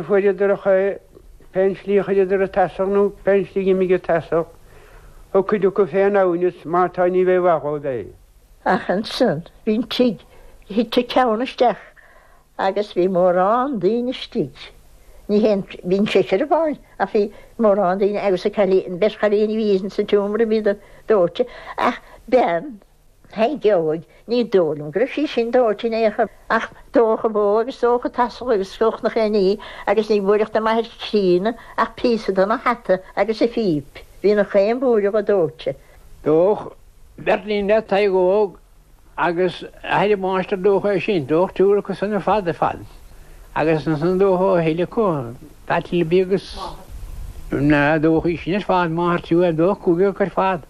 fuaireadar a chao pén slí chuireadar an t-asal nó pén slí imigh an t-asal thug cuid acu féin amhneas má tá ní haon mhaith dhóibh é. Ach ansan bhí'n tigh thit an ceann isteach agus bhí mórán daoine istigh ní haon bhí'n seisear amháin ach bhí mórán daoine agus a cailín beirt chailíní bhí insa tseomra bhíodar dóite ach bean Thaidhg Óig, ní dóigh liom go raibh sí sin dóite in aon chor, ach dódh an bhó agus dódh an t-asal agus gach aon ní, agus ní bhfuaireadh de m'athair críonna ach píosa dena hata agus a phíp, bhí an chaon bhlúire dhe dóite. Dódh beirt iníon le Tadhg Óg agus athair an mháistir, dódh é sin, dódh triúr acu san ar fad, ar fad, agus ansan dódh a thuille acu, Pat Libby agus, dódh í sin ar fad, máthair triúir, dódh cúigear acu ar fad.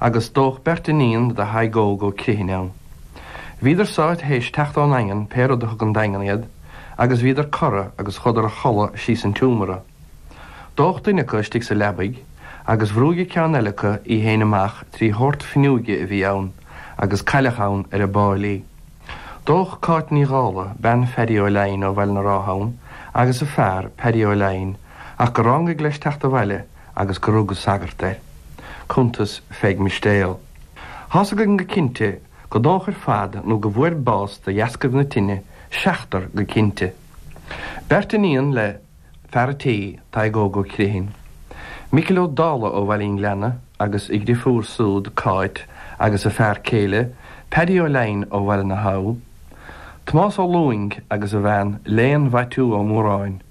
agus dódh beirt iníon do Thadhg Óg Ó Criomhthain ann. Bhíodar súd théis teacht ón Daingean, pé rud a thug 'on Daingean iad, agus bhíodar cortha agus chuadar a chodladh síos an tseomra. Dódh duine acu istigh sa leabaidh agus bhrúigh an ceann eile acu í fhéin amach trí shórt fuinneoige a bhí ann agus cailleadh ann ar ball í. Dódh Cáit Ní Dhála, bean Pheaidí Ó Laighin ó Bhaile na Rátha ann agus a fear, Peaidí Ó Laighin, ach go rángaigh leis teacht abhaile agus gur rug an sagart air. Cuntas Pheig Mistéil. Tá's againn go cinnte go ndódh ar fad nó go bhfuair bás de dheascaibh na tine, seachtar go cinnte. Beirt iníon le fear a' tí, Tadhg Óg Ó Criomhthain, Micil Ó Dála ó Bhaile an Ghleanna agus a dhriofúr súd, Cáit, agus a fear céile, Peaidí Ó Laighin ó Bhaile na hAbha, Tomás Ó Lúing agus a bhean Léan Mhaitiú Ó Móráin.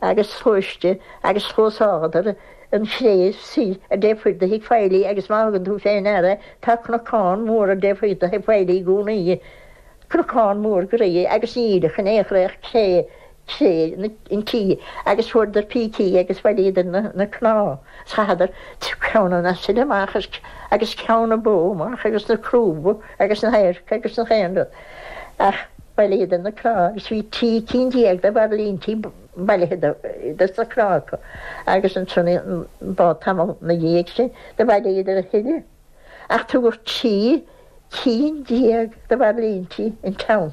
agus sluaiste agus thógadar an chré i dtaobh thuaidh de thigh Failí agus má thugann tú féin aire tá cnocán mór i dtaobh thuaidh de thigh Failí i gcónaí, cnocán mór groí agus níl ann in aon chor ach cré cré an tí agus fuaireadar pící agus bhailíodar na na cnámha is chaitheadar ceann an asail amach agus agus ceann na bó amach agus na crúba agus na hadharca agus an chaon rud. Ach bhailíodar na cnámha agus bhí trí cinn déag de bhairlíntí bailithe de sna cnámha acu agus ansan i bhfad tamall na dhiaidh sin do bhailíodar a thuilleadh ach tugadh trí cinn déag de bhairlíntí 'on Teampall.